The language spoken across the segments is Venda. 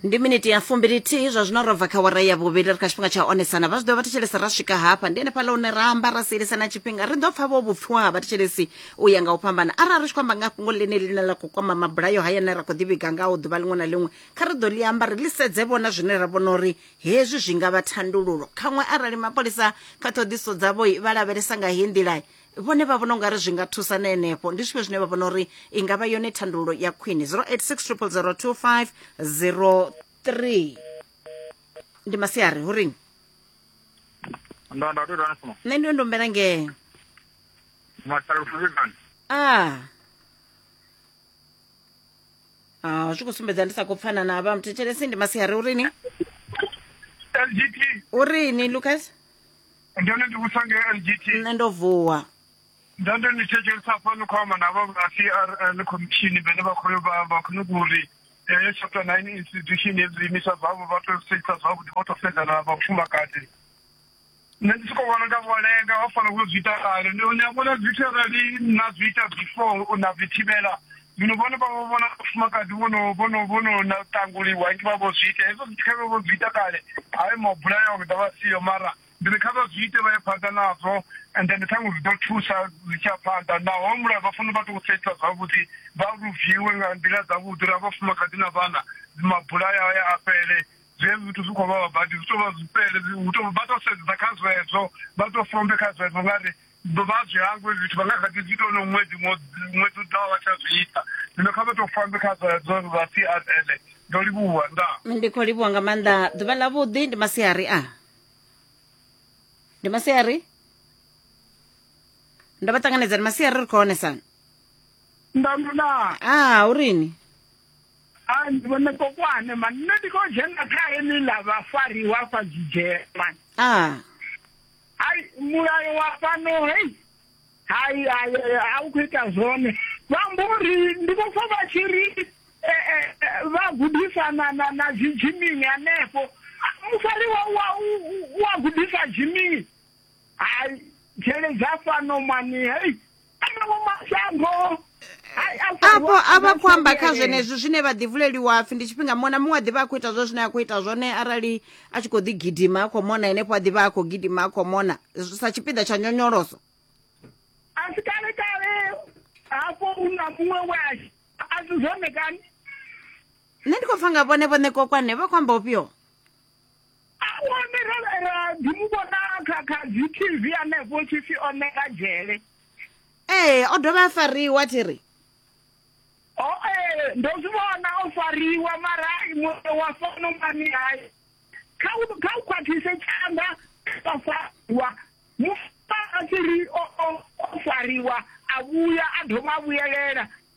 ndi miniti ya fumbilithihi zwa zwino robva kha wara ya vhuvhili ri kha tshifhinga tsha onesana vha zwi ḓo vha thetshelesa ra swika hafha ndi henefhaḽa hune ra amba ra sielisana tshifhinga ri ḓo pfa vho vhupfiwa ha vhathetshelesi u ya nga u fhambana arali ri tshi khou amba nga fhungo ḽine ḽine ḽa khou kwama mabulayo haya ne ra khou ḓivhiga ngaho ḓuvha ḽiṅwe na ḽiṅwe kha ri ḓo ḽi amba ri ḽi sedze vhona zwine ra vhona uri hezwi zwi nga vha thandululo khaṅwe arali mapholisa kha ṱhoḓiso dzavho vha lavhelesa nga heyi nḓila vhone vha vhona ungari zwi nga thusa na henefho ndi zwifhio zwine vha vhona uri i nga vha yone thandululo ya khwine 0860002503 ndi masiari hu ring ndo ndo ndo ndo nṋe ndi ndombela ngee masalufuzivani a Ah, zwi khou sumbedza ndi sa khou pfana na vha muthetshelesi ndi masiari urini lgt urini lucas ndone ndi vhusa nge lgt nṋe ndo vuwa ndande ni thetshelesa hafhano khou amba navho vha crn khomishini vhene vha khoyo vha khou nyuga uri heyo chapter nine institution ye zwiimiswa zwavho vha tou sedzisa zwavhuḓi vho tou sedzana na vhafumakadzi nṋe ndi sokou vhona nga vho lenga vha fanela u zwi ita kale ni a vhona zwithu arali na zwi ita before na zwi thivhela Zwino vhone vha vho vhona vhafumakadzi vho no vho no vho no na ṱanguliwa ngi vha vho zwi ita hezwo zwithu khavhe vho zwi ita kale hayo mabula yao ḓa vha siyo mara ndi ri kha vha zwi ite vha ye phanḓa nazwo and then ṱhaṅwe zwi ḓo thusa zwi tshi ya phanḓa naho mulayo vha fanela vha tou setsha zwavhuḓi vha luviwe nga nḓila dzavhuḓi ra vhafumakadzi na vhana mabula yao ya a fhele zwezwi zwithu zwi khou vha vha badi zwi tou vha zwifhele hu tou vha tou sedzesa kha zwezwo vha tou fombe kha zwezwo nga ri vha zwi hangwe zwithu vha nga kha ḓi zwi ita ono ṅwedzi ṅwedzi u ḓaho vha tsha zwi ita zwino kha vha tou fambe kha zwadzo zwa crl ndo livhuwa nda ndi khou livhuwa nga maanḓa ḓuvha ḽa vhuḓi ndi masiari a ndi masiari ndo vha ṱanganedza ndi masiari ri khou honesana ndanduna a ah, urini a ndi vhone kokwane mani nṋe ndi khou dzhena kha eni ḽa vhafariwa fha zwidzhema a ah. hai mulayo wa fhano hei hai hai a u khou ita zwone vha mbo ri ndi vho pfa vha tshi ri eh, eh, eh, vha gudisana na na zwidjimini hanefho mufari wa wa wa gudisa dzhimini hai dzhele dza fhano mani hei afho a vha khou amba kha zwenezwi zwine vha ḓivhuleliwa pfhi ndi tshifhinga muṅwe na muṅwe a ḓivha a khou ita zwo zwine a khou ita zwone arali a tshi khou ḓi gidima a khou mona henefho a ḓivha a khou gidima a khou mona sa tshipiḓa tsha nyonyoloso a si kale kale hafho u na muṅwe we a si zwone kani nṋe ndi khou pfa nga vhone vhone kokwane vha khou amba ufhio awone ra ḓi mu vhona kha kha dzi tv anefho tshi pfi o ṋeka dzhele ee o dovha a fariwa thi ri o ee ndo zwi vhona o fariwa mara muṋe wa fano mani hai kha u kha u khwaṱhise tshanḓa kha fariwa mufa a tshi ri o fariwa a vhuya a dovha a vhuyelela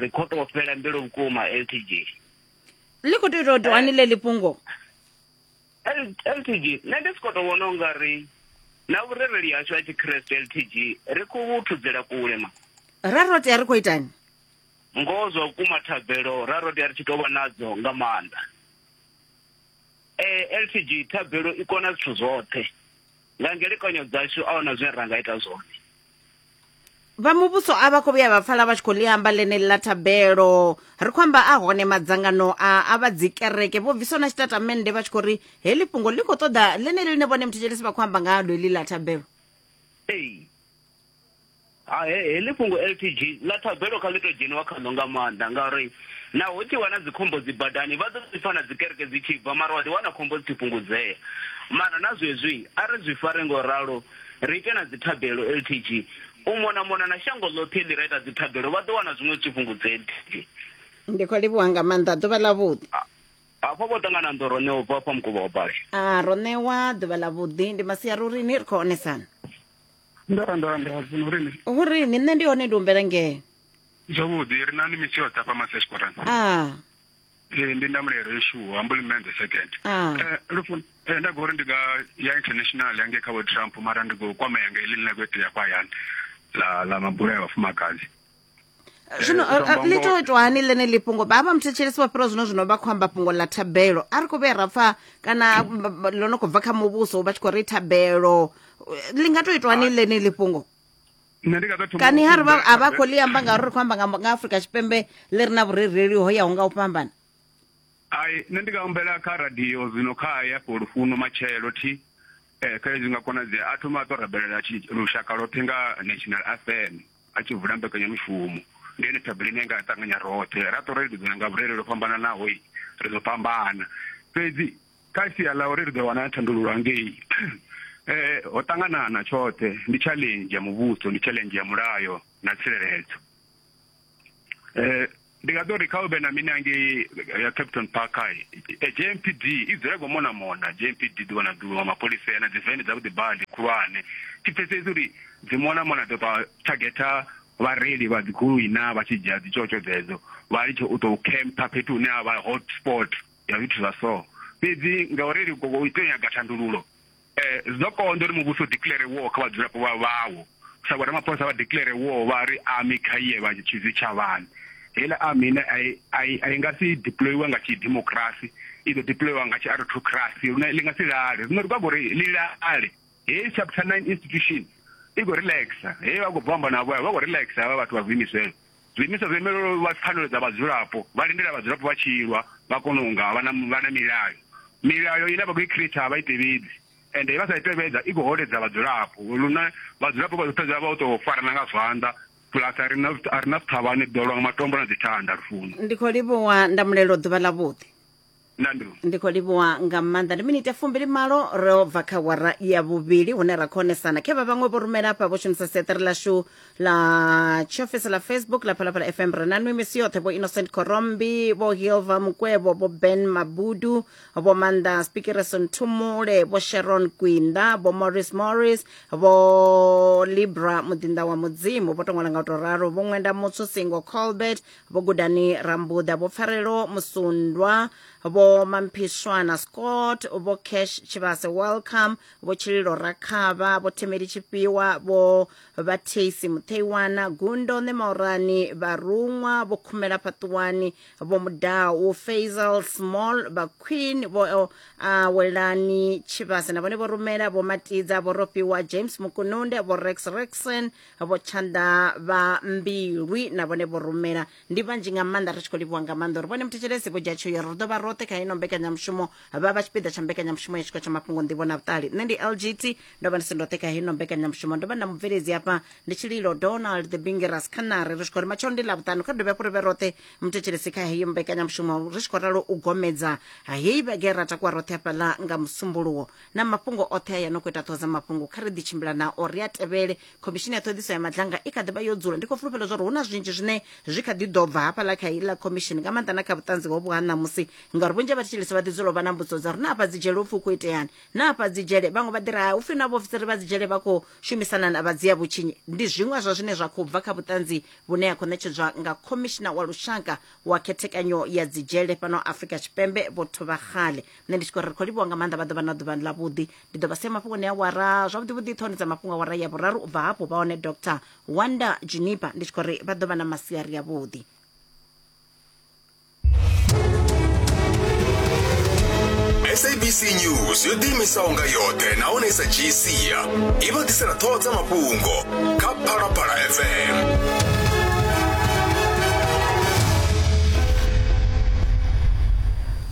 ri khou tou fhela mbilu vhukuma ltg ḽi khou tou ita u tou anile ḽi fhungo ltg nṋe ndi si khou tou vhona u nga ri na vhurereli hashu ha tshikreste ltg ri khou vhu thudzela kule ma ra ro tea ri khou itani ngoho zwa vhukuma thabelo ra ro tea ri tshi tou vha nadzo nga maanḓa um ltg thabelo i kona zwithu zwoṱhe nga ngelekanyo dzashu a huna zwine ra nga ita zwone vha muvhuso a vha khou vhuya vha pfala vha tshi khou ḽi amba ḽeneli ḽa thabelo ri khou amba a hone madzangano a a vha dzikereke vho bviswa na tshitatamennde vha tshi khou ri heḽi fhungo ḽi khou ṱoḓa ḽeneli ḽine vhone muthetshelesi vha khou amba nga ḽo heḽi ḽa thabelo ee heḽi fhungo ltg ḽa thabelo kha ḽi tou dzheniwa khaḽo nga maanḓa ngauri naho tshi wana dzikhombo dzi badani vha ḓo zwipfa na dzikereke dzi tshi bva mara wa ḓiwana khombo dzi tshi fhungudzea mara na zwezwi a ri zwi fare ngo ralo Ri ite na dzithabelo ltg. U mona mona na shango ḽoṱhe ḽi ra ita dzithabelo vha ḓo wana zwiṅwe zwi tshi fhungudze ltg. Ndi khou livhuwa nga maanḓa. Ḓuvha ḽavhuḓi. A, Hafha vho ṱangana ndo ro ṋewa ubva fha mukovha wa bali. A, Ro ṋewa ḓuvha ḽavhuḓi. Ndi masiari uri ni ri khou onesana. Ndo ra ndo ra ndo ra zwino uri ni. Hu ri ni nṋe ndi hone ndi humbela ngeno. Zwavhuḓi, ri na ni misi yoṱhe hafha Masesporan. A. Ee, ndi ndamulelo yeshuwa humbly man the second Ah. Eh, lufu eh, nda gori ndi nga ya international yange kha vho trump mara ndi khou kwamea nga ili ḽine khou itea kwa hayani ḽa ḽa mabula ya vhafumakadzi zwino Eh, ri- ri- ḽi tou itwa hani ḽeneli fhungo vha vha muthetshelesi vha fhira zwino zwino vha khou amba fhungo ḽa thabelo a ri khou vhuya ra pfa kana b- b- ḽo no khou bva kha muvhuso vha tshi khou ri thabelo Eh, ḽi nga tou itwa hani ḽeneli fhungo nṋe ndi nga ḓo thoma kani u ha ri vha humbela a vha khou ḽi amba ngauri ri khou amba nga nga afurika tshipembe ḽi re na vhurereli ho yaho nga u fhambana ai nṋe ndi nga humbela kha radio zwino kha ya fho lufuno matshelo thi eh kha zwi nga konadzea a thoma a to rabelela tshi- lushaka lothe nga national fm a tshi vula mbekanyamushumo ndi ene thabelo ine nga ṱanganya roṱhe ra to relelisana nga vhurereli ho fhambananaho i, ri ḓo fhambana fhedzi kha sia ḽa uri ri ḓo wana thandululo hangei eh ho ṱangana na tshoṱhe ndi challenge ya muvhuso ndi challenge ya mulayo na tsireledzo eh ndi nga ḓo ri kha u vhe na mini hangei ya captain park hai jmpd i dzule go mona mona jmpd ḓuvha na ḓuvha mapholisa ya na dziveni dza vhuḓi badi khulwane thi pfesesi uri dzi mona mona ḓo ṱwa targeta vhareili vha dzigoloi na vha tshi dzhia dzitshotsho dzedzo vha litshe u tou camper fhethu hune ha vha hot spot ya zwithu zwa so. Fhedzi ngauri Likoko u tea u nyaga thandululo, zwi ḓo konḓa uri muvhuso u declare war kha vhadzulapo vha vhawo. Sa vho Ramaphosa vha declare war vha ri army kha i ye vha tshi zwitshavhani. Heiḽa army ine a i, a i, a i nga si deployiwe nga tshidemokirasi, i ḓo deployiwa nga tshiarothokirasi lune ḽi nga si lale. Zwino ri khou nyaga uri ḽi lale. Heyi chapter nine institution i khou relaxer, heyi vha khou bva amba navho vha khou relaxer havha vhathu vha zwiimiswa hezwo. Zwiimiswa zwo imelwaho u lwa pfanelo dza vhadzulapo vha lindela vhadzulapo vha tshi lwa vha kona u nga vha na vha na milayo. Milayo ine vha khou i khireitha a vha i tevhedzi ende vha sa i tevhedza i khou holedza vhadzulapo lune vhadzulapo vha ḓo fhedza vha tou farana nga zwanḓa plus a ri na a ri na zwithavhani ḓo lwa nga matombo na dzithanda lufuno. Ndi khou livhuwa Ndamulelo ḓuvha ḽavhuḓi. nandru ndi khou livhuwa nga maanḓa ndi minite fumbili malo ro bva kha wara ya vhuvhili hune ra khou onesana khe vha vhaṅwe vho rumela hafha vho shumisa seṱere ḽashu ḽa tshiofisi ḽa facebook ḽa phalaphala fm ri na nwi misi yoṱhe vho innocent korombi vho hilva mukwevho vho ben mabudu vho manda spikereson thumule vho sharon kwinda vho morris morris vho libra muḓinḓa wa mudzimu vho to ṅwala nga u to ralo vho ṅwenda mutsu singo colbert vho gudani rambuḓa vho pfarelo musundwa vho mamphiswana scott vho cash tshivhase welcome vho tshililo rakhavha vho themeli tshifhiwa vho vhatheisi mutheiwana gundo ṋemaurani vharuṅwa vho khumela fhaṱuwani vho mudau faisal small vha queen vho awelani tshivhase na vhone vho rumela vho matidza vho rofhiwa james mukununde vho rex rexon vho tshanḓa vha mbilwi na vhone vho rumela ndi vhanzhi nga maanḓa ri tshi khou livhuwa nga maanḓa uri vhone muthetshelesi vho dzhia tsheo ya uri ri ḓo vha roṱhe kha ino mbekanyamushumo vha vha tshipiḓa tsha mbekanyamushumo ya tshiko tsha mafhungo nḓivho na vhuṱali nṋe ndi lgt ndo vha ndi si ndoṱhe kha ino mbekanyamushumo ndo vha na mubveledzi hafha ndi tshililo donald the bingeras khanare ri tshi khou ri matshelo ndi ḽavhuṱanu kha dovhe hafhu ri vhe roṱhe muthetshelesi kha heyo mbekanyamushumo ri tshi khou ralo u gomedza ha heyi vhege ra takuwa roṱhe hafhaḽa nga musumbuluwo na mafhungo oṱhe a ya no khou ita ṱhoho dza mafhungo kha ri ḓi tshimbila nao ri a tevhele khomishini ya ṱhoḓiso ya madlanga i kha ḓi vha yo dzula ndi khou fulufhela zwa uri hu na zwinzhi zwine zwi kha ḓi ḓo bva hafhaḽa kha iḽa khomishini nga maanḓa na kha vhuṱanzi hovhu ha ṋamusi ngauri vhunzhi ha vhathetshelesi vha ḓi dzula u vha na mbudziso dza uri na afha dzi dzhele upfi u khou iteani na afha dzi dzhele vhaṅwe vha ḓi ri ha upfi na vhaofisiri vha dzi dzhele vha khou shumisana na vha dzia vhutshinyi ndi zwiṅwe zwa zwine zwa khou bva kha vhuṱanzi vhune ha khou ṋetshedzwa nga khomishina wa lushaka wa khethekanyo ya dzi dzhele fhano afrika tshipembe vho thuvhaxale nṋe ndi tshi khou ri ri khou livhuwa nga maanḓa vha ḓovha na ḓuvhani ḽa vhuḓi ndi ḓo vha sia mafhungoni a wara zwavhuḓi vhuḓi ṱhoni dza mafhungo a wara ya vhuraru u bva hafhu vha hone dr wonder junipa ndi tshi khou ri vha ḓovha na masiari ya vhuḓi sabc news yo ḓiimisaho nga yoṱhe nahone i sa dzhii sia i vha ḓisela ṱhoho dza mafhungo kha phalaphala fm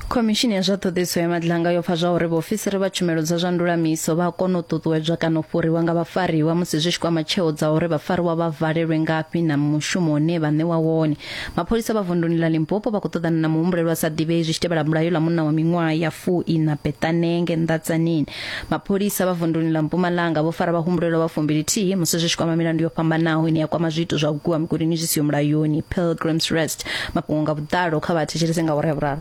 Khomishini ya zwa ṱhoḓisiso ya madlanga yo pfa zwa uri vhaofisiri vha tshumelo dza zwa ndulamiso vha a kona u ṱuṱuwedzwa kana u fhuriwa nga vhafariwa musi zwi tshi kwama tsheo dza uri vhafariwa vha valelwe ngafhi na mushumo une vha ṋewa wone. Mapholisa vha vunduni ḽa Limpopo vha khou ṱoḓana na muhumbulelwa sa ḓivhei zwi tshi tevhela bulayo ḽa munna wa miṅwaha ya fu-iṋa Betanenge Ndatsanini Mapholisa vha vunduni ḽa Mpumalanga vho fara vhahumbulelwa vha fumbilithihi musi zwi tshi kwama milandu yo fhambanaho ine ya kwama zwiito zwa u gwiwa migudini zwi siho mulayoni. Pilgrims Rest mafhungo nga vhuḓalo kha vha thetshelese nga awara ya vhuraru.